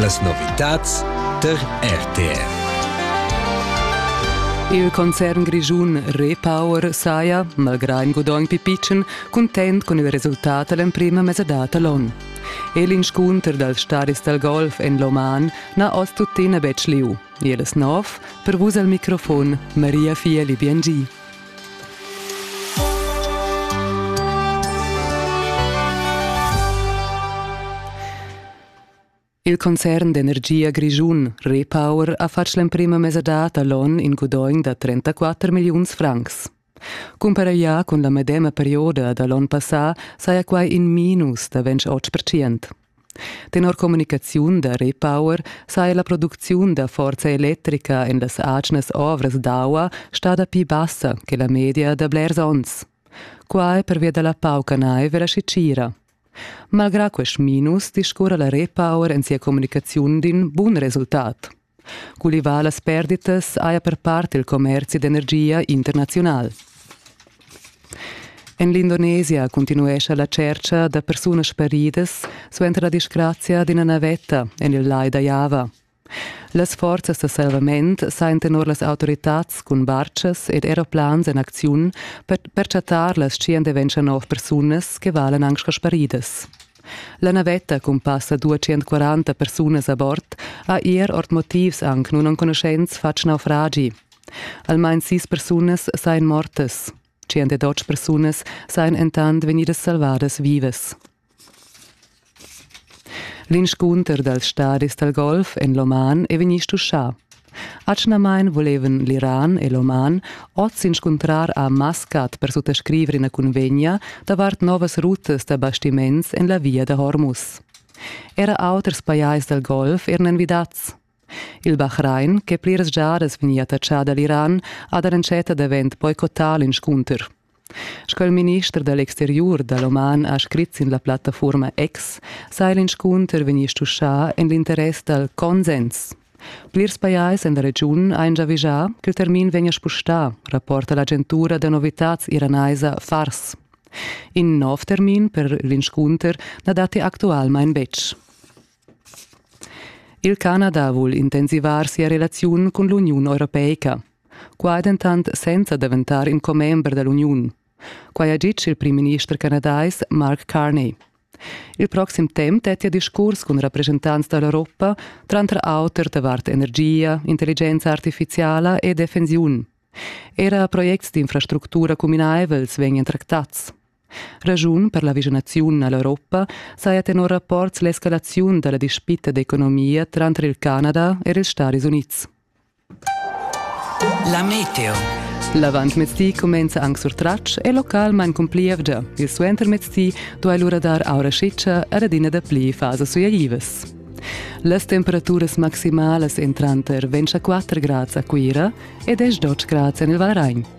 Las novitads tar RTR. Il concern grischun Repower saja, malgrà in gudogn pipitschen, cuntent cun il resultat a l'emprima mesadad da l'onn. E l'inscunter dals staris dal golf en l'Oman n'ha oz tuttina betg lieu. Il snov, per vus al microfon Maria Fieli Biengi. Il concern d'energia grischun Repower ha fatg l'emprima mesadad a l'onn in gudogn da 34 milliuns francs. Cumparaglià cun la medema perioda da l'onn passà saja quai in minus da 28%. Tenor communicaziun da Repower saja la producziun da forza electrica en las atgnas ovras d'aua stada pli bassa che la media da blers onns. Quai pervia da la pauca naiv e la scitgira. Malgrà quest minus discurra la Repower en sia communicaziun d'in bun resultat. Cultivà las perditas haja per part il commerzi d'energia internaziunal. En l'Indonesia cuntinuescha la tschercha da persunas sparidas suenter la disgrazia d'ina navetta en il lai da Java. Las forzas da salvament sajan tenor las autoritads cun bartgas ed aeroplans en acziun per, per chattar las tschient e ventscha nov persunas che valan anc sco sparidas. La navetta cun passa 240 persunas a bord ha er ord motivs anc nunenconuschents fatg naufragi. Almain sis persunas sajan mortas. 102 persunas sajan entant vegnidas salvadas vivas. L'inscunter dals stadis dal golf en l'Oman è vegnì stuschà. Atgnamain volevan l'Iran e l'Oman oz s'inscuntrar a Maskat per suttascriver ina cunvegna davart novas rutas da bastiments en la via da Hormuz. Era auters pajais dal Golf eran envidads. Il Bahrain, che pliras giadas vegnia attachà da l'Iran, ha da l'entschetta davent boicottà l'inscunter. Sco il minister da l'exteriur da l'oman ha scrit sin la plattafurma X saja l'inscunter vegnì stuschà en l'interess dal consens. Plirs pajais en la regiun han giavischà ch'il termin vegnia spustà, rapporta l'agentura da novitads iranaisa Fars. In nov termin per l'inscunter na datti actualmain betg. Il Canada vul intensivar sia relaziun cun l'Uniun europeica. Qua è dentant senza daventar in commember da l'uniun. Quai ha ditg il primminister canadais Mark Carney. Il proxim temp dettia discurs cun rappresentants da l'Europa, tranter auter davart energia, intelligenza artifiziala e defensiun. Era projects d'infrastructura cuminaivels vegnan tractads. Raschun per la vischinaziun all'Europa saja tenor rapports l'escalaziun da la dispita d'economia tranter il Canada e ils Stadis Unids. La meteo. L'avantmezdi cumenza anc sur tratg e local main cumplievgia. Il suentermezdi duai lura dar aura schitscha ed adina dapli fasas suaivas. Las temperaturas maximalas èn tranter 24 grads a Cuira e 10 grads en il Valragn.